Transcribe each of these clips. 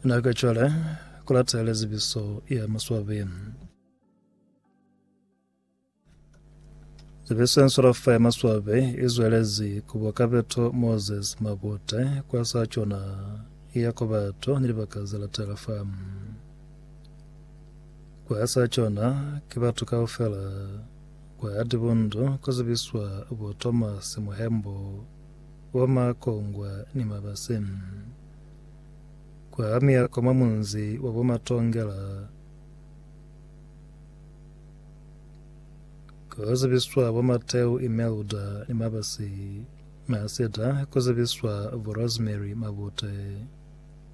Na ka cwale ku latele zibiso ya maswabi. Zibiso ya nswalafa ya maswabi i zwelezi ku bwa kapeto Moses Mabute kwa sa cona ya kwa bato ni libaka ze latela fa. Kwa sa cona ki batu kaufela kwa Dibundu ku zibiswa bo Thomas Muhembo Kwa makongwa ni mabase. Kwa miako mwa munzi wa bo Matongela ku zibiswa bo Mateu Imelda ni mabase mwa Cedar ku zibiswa bo Rosemary Mabute.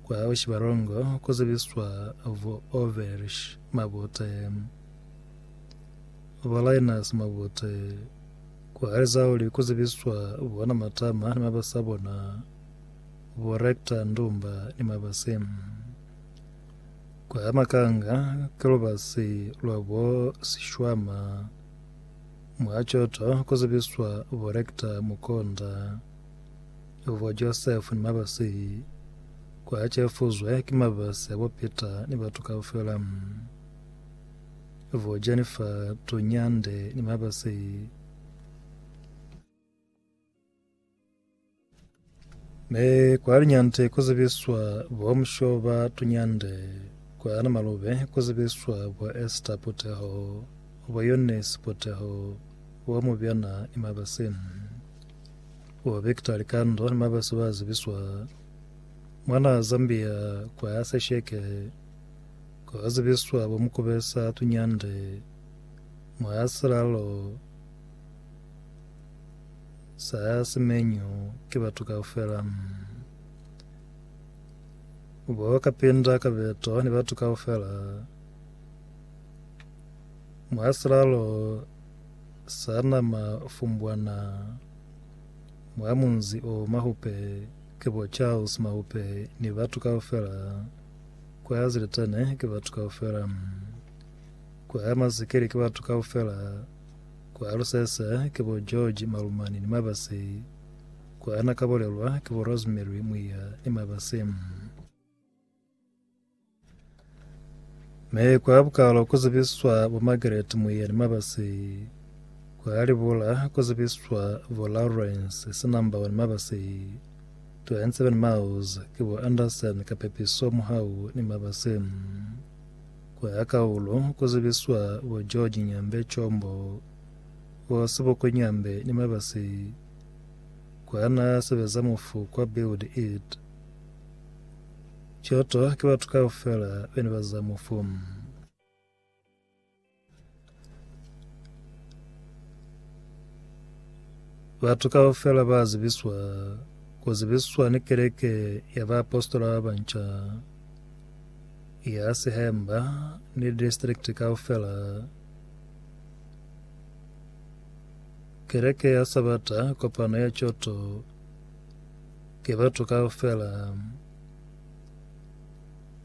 Kwa Bushibalongo ku zibiswa bo Overish Mabute, bo Linus Mabute, Ku halisa kuli ku zibiswa bona matama ni mabasi a bona, bo Rector Ndumba ni mabasi. Kwa Makanga ki lubasi lwa bo Sishwama. Mwa Choto ku zibiswa bo Rector Mukonda, bo Joseph ni mabasi. Kwa Chefuzwe ki mabasi a bo Peter ni batu kaufela. Vo Jennifer Tonyande ni Mabase ne kwa Linyante ku zibiswa bo Mushoba Tonyande, kwa Namalube ku zibiswa bo Esther Puteho, bo Eunice Puteho, bo Mubyana ni Mabase. Bo Victor Likando ni Mabase ba zibiswa mwana Zambia kwa Sesheke Ku ka zibiswa bo mukubesa tunyande mwa silalo sa simenyu ki batu kaufela. Bo kapinda kabeto ni batu kaufela mwa silalo sa nama fumbwana mwa munzi o Mahupe ki bo Charles Mahupe ni batu kaufela. Ku ya ziletane ki batu kaufela. Ku ya mazikili ki batu kaufela. Ku ya lusese ki bo George, Malumani ni Mabasi. Ku ya na kabolelwa ki bo Rosemary, Muiya ni Mabasi. Me ku ya bukalo ku zibiswa bo Margaret, Muiya ni Mabasi. Ku ya libula ku zibiswa bo Lawrence, Sinambawa ni Mabasi. 207 miles ki bo Anderson ka pepiso muhau ni mabasi. Ku ya ka ulo ku zibiswa bo George Nyambe Chombo, bo Seboko Nyambe ni mabasi kwa na sebeza mufu kwa Build It Kyoto ki batu kaufela bene ba za mufu. Batu kaufela ba zibiswa ku zibiswa ni keleke ya baapositola ba banca ya Sihemba ni distrikti kaufela. Keleke ya Sabata kopano ya Choto ke batu kaufela